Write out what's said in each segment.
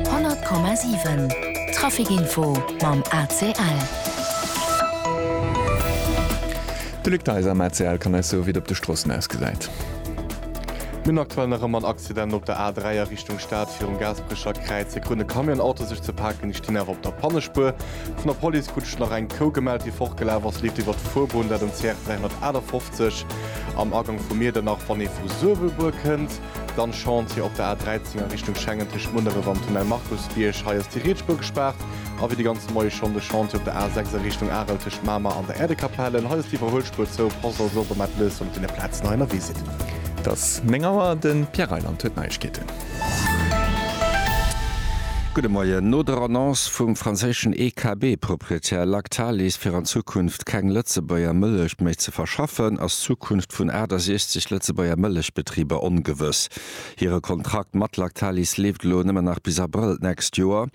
100,7 Trafic Info mam ACL. De Luc Deiser am ACL kann eis soe wéi et op de Stroossen ausgesäit. Mir hunn aktuell nach ëmmer en Accident op der A3 a Richtung Stad. Virum Gaasperecher Kräiz e grënne Camion Auto sech ze paken. Déi stinn awer op der Pannespuer. Vun der Police krut ech nach eng Kou gemellt déi fortgelaf ass. Leeft iwwert d'Fuerbunn, dat um CR 358 am Agank vu Miedernach wann ee vu Suerwelbuer kënnt. Dann Chantier op der A13 a Richtung Schengen tëscht Munneref an Tunnel Markusbierg. Hei ass déi Rietspur gespaart. A wéi de ganze Moie schonn de Chantier op der A6 a Richtung Arel tëscht Mamer an der Äerdekapellen. Hei ass d'Iwwerhuelspur zou. Passt also op a maacht lues mat deene Plazen hei ënnerwee sidd. Et ass 9 Auer, de Pierre Reyland huet d'Neiegkeeten. Gudde Moien. No der Annonce vum franséischen EKB-Proprietär Lactalis fir an Zukunft Keng Lëtzebuerger Mëllech méi ze verschaffen, ass d'Zukunft vun 68 Lëtzebuerger Mëllechbetriber ongewëss. Hire Kontrakt mat Lactalis leeft elo nëmmen nach bis Abrëll d'nächst Joer.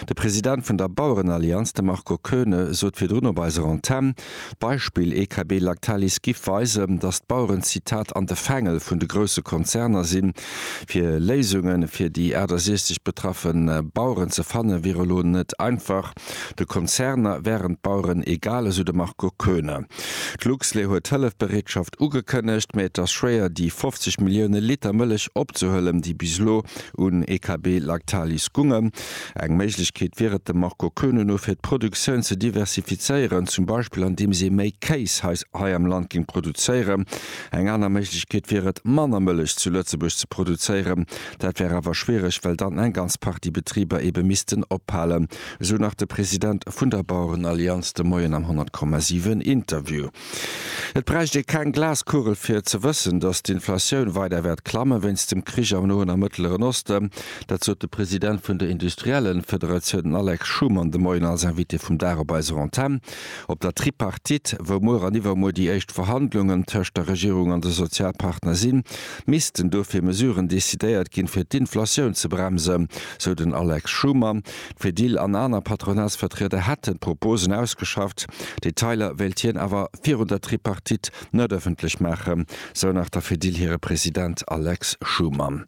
De President vun der Bauerenallianz, de Marco Koeune, sot virdrun op eiser Antenn, d'Beispill EKB-Lactalis giff weisen, datt d'Baueren, Zitat, an de Fängel vun de grousse Konzerner sinn. Fir Léisunge fir déi 68 betraffe Baueren ze fanne wier elo net einfach. De Konzerner wären d'Baueren egal, esou de Marco Koeune. D'Luxlait huet Hëllefbereetschaft ugekënnegt, mä et ass schwéier, déi 50 Millioune Liter Mëllech opzehuelen, déi bis elo un EKB Lactalis gungen. Eng Méiglechkeet wier et dem Marco Koeune no, fir d'Produktioun ze diversifizéieren, zum Beispill andeems ee méi Kéis hei am Land géing produzéieren. Eng aner Méiglechkeet wier et, manner Mëllech zu Lëtzebuerg ze produzéieren, Dat wär awer schwiereg, well dann eng ganz Partie Betriber eebe missten ophalen, esou nach de President vun der Bauerenallianz de Moien am 100,7 Interview. Et bräicht ee keng Glaskugel fir ze wëssen, datt d'Inflatioun weider wäert klammen, wéinst dem Krich am Noen a Mëttleren Osten. Dat sot de President vun der Industriellenfederatioun den Alex Schumann de Moien als Invité vum Dag op eiser Antenn. Op der Tripartite, wou muer an iwwermuer déi éischt Verhandlungen tëscht der Regierung an de Sozialpartner sinn, missten dofir Mesuren decidéiert ginn, fir d'Inflatioun ze bremsen, sou den Alex Schumer. D'Fedil an aner Patronatsvertrieder hätten d'Proposen ausgeschafft. Detailer wéilt hien awer virun der Tripartite net ëffentlech maachen, sou nach der Fedil hire President Alex Schumer.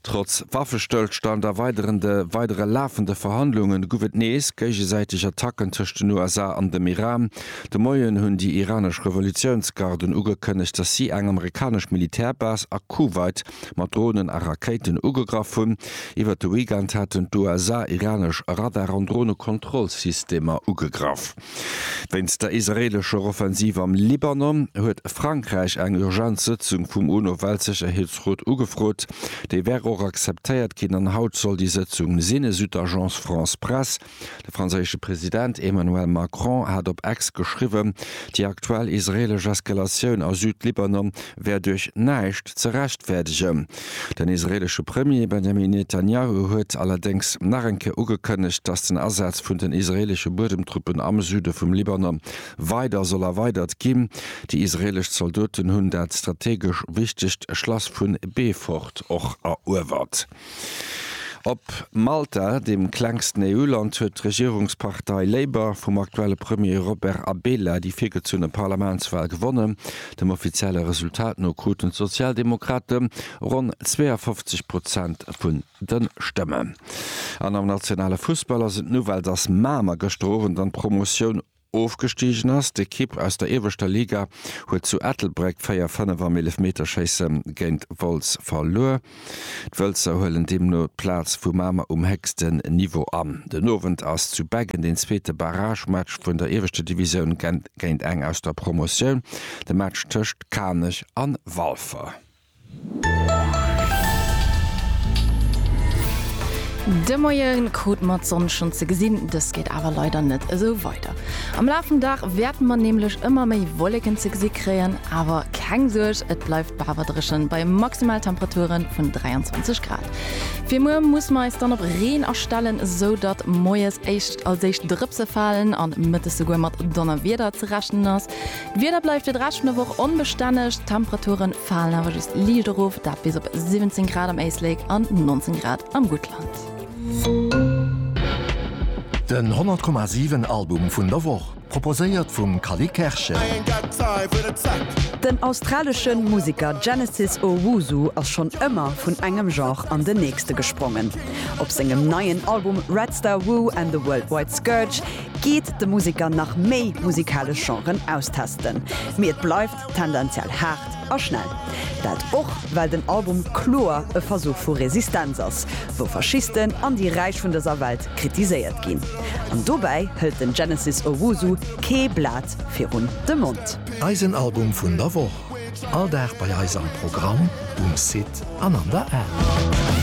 Trotz Waffestëllstand a weiderende weidere lafende Verhandlunge guff et nees géigesäiteg Attacken tëscht den USA an dem Iran. De Moien hunn déi iranesch Revolutiounsgarden ugekënnegt, datt si eng amerikanesch Militärbase a Kuwait mat Dronen a Rakéiten ugegraff hunn. Iwwert de Weekend haten d'USA iranesch Radar an Dronekontrollsystemer ugegraff. Wéinst der israeelescher Offensiv am Libanon huet Frankräich eng urgent Sëtzung vum UNO-Weltsécherheetsrot ugefrot. Déi wär och akzeptéiert ginn an haut soll déi Sëtzung sinn, esou d'Agence France-Presse. De franséische President Emmanuel Macron hat op Ex geschriwwen, déi aktuell israeelesch Eskalatioun a Süd-Libanon wär duerch näischt ze rechtfäerdegen. Den israeelesche Premier Benjamin Netanjahu huet allerdéngs nach eng Kéier ugekënnegt, datt den Asaz vun den israeelesche Buedemtruppen am Süde vum Libanon weider soll erweidert ginn. Déi israeelesch Zoldoten hunn dat strategesch wichtegt Schlass vu Beefort och eruewert. Op Malta, deem klengsten EU-Land, huet d'Regierungspartei Labour vum aktuelle Premier Robert Abela déi virgezunne Parlamentswal gewonnen. Dem offizielle Resultat no kruten d'Sozialdemokrate ronn 52 Prozent vun de Stëmmen. An am nationale Fussball ass et Nouvelle, dass Mamer gëschter Owend an d'Promotioun ofgestigen ass. D'Ekipp aus der ieweschter Liga huet zu Ettelbréck 4, 5 am Eelefmeterschéisse géint Wolz verluer. D'Wëlzer huelen deemno d'Plaz vu Mamer um héchsten Niveau an. Den Owend ass zu Beggen den zweete Barragematch vun der ieweschter Divisioun géint eng aus der Promotioun, de Match tëscht Kanech an Walfer. De Moie krut mat Sonn schonn ze gesinn, dëst geet awer leider net esou weider. Am Laf vum Dag wäerte mer nämlech ëmmer méi Wolleken ze gesi kréien, awer keng Suerg, et bleift bawer dréchen bei Maximaltemperature vun 23 Grad. Fir muer musse mer eis dann op Reen astellen, esou datt moies als éischt Drëpse falen an mëttes souguer mat Donnerwieder ze rechnen ass. D'Wieder bleift fir de Rescht vun der Woch onbestänneg, d'Temperature falen awer just liicht erof, dat bis op 17 Grad am Éislek an 19 Grad am Guttland. Den 100 Komma 7 Album vun der Woch, proposéiert vum Kali Kerschen. Den australeschen Museker Genesis Owusu ass schonn ëmmer vun engem Genre an den nächste gesprongen. Op sengem neien Album Red Star Woo and the Worldwide Scourge geet de Museker nach méi musikalesch Genren austesten. Mee et bleift tendenziell haart a schnell. Dat och well den Album kloer e Versuch vu Resistenz ass, wou Faschisten an déi Räich vun dëser Welt kritiséiert ginn. An dobäi hëlt den Genesis Owusu kee Blat virun de Mond. Eisen Album vun der Woch, all Dag bei eis am Programm, um Site an an der App.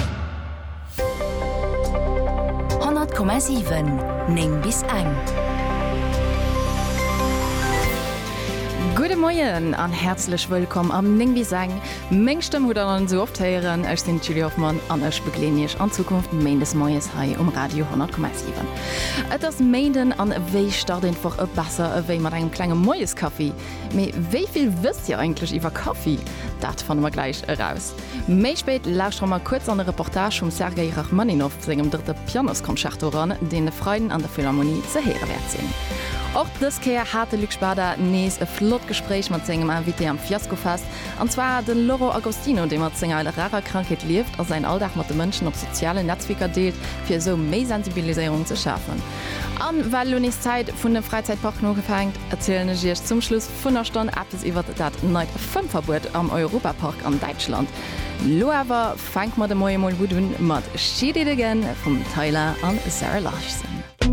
100,7 9 bis eng. Gudde Moien an häerzlech wëllkomm am 9 bis eng. Meng Stëmm hutt der sou oft héieren. Ech sinn d'Julie Hoffmann an ech begleeden Iech an Zukunft Méindes Moies hei um Radio 100,7. Et ass Méinden an wéi start een d'Woch e besser ewéi mat engem klenge Moieskaffi? Mee wéi vill wësst Dir eigentlech iwwer Kaffi? Dat fanne mer gläich eraus. Méi spéit lauschtere mer kuerz an e Reportage vum Sergei Rachmaninoff sengem drëtte Pianosconcerto eran, deen e Freiden an der Philharmonie ze héiere wäert sinn. Och dës Kéier hat de Luc Spada nees e flott Gespréich mat sengem Invité am Fiaskofest, an zwar de Loro Agostino, dee mat senger rarer Krankheet lieft a säin Alldag mat de Mënschen op sozialen Netzwierker deelt, fir esou méi Sensibiliséierung ze schafen. A well elo nees d'Zäit vun de Fräizäitparken ugefänkt. Erzielen ech Iech zum Schluss vun der Stonn eppes iwwert dat neit Fëmmverbuet am Europapark an Däitschland. Lo awer fänke mer de Moie mol gutt un mat She Did It Again vum Tyla an Zara Larson.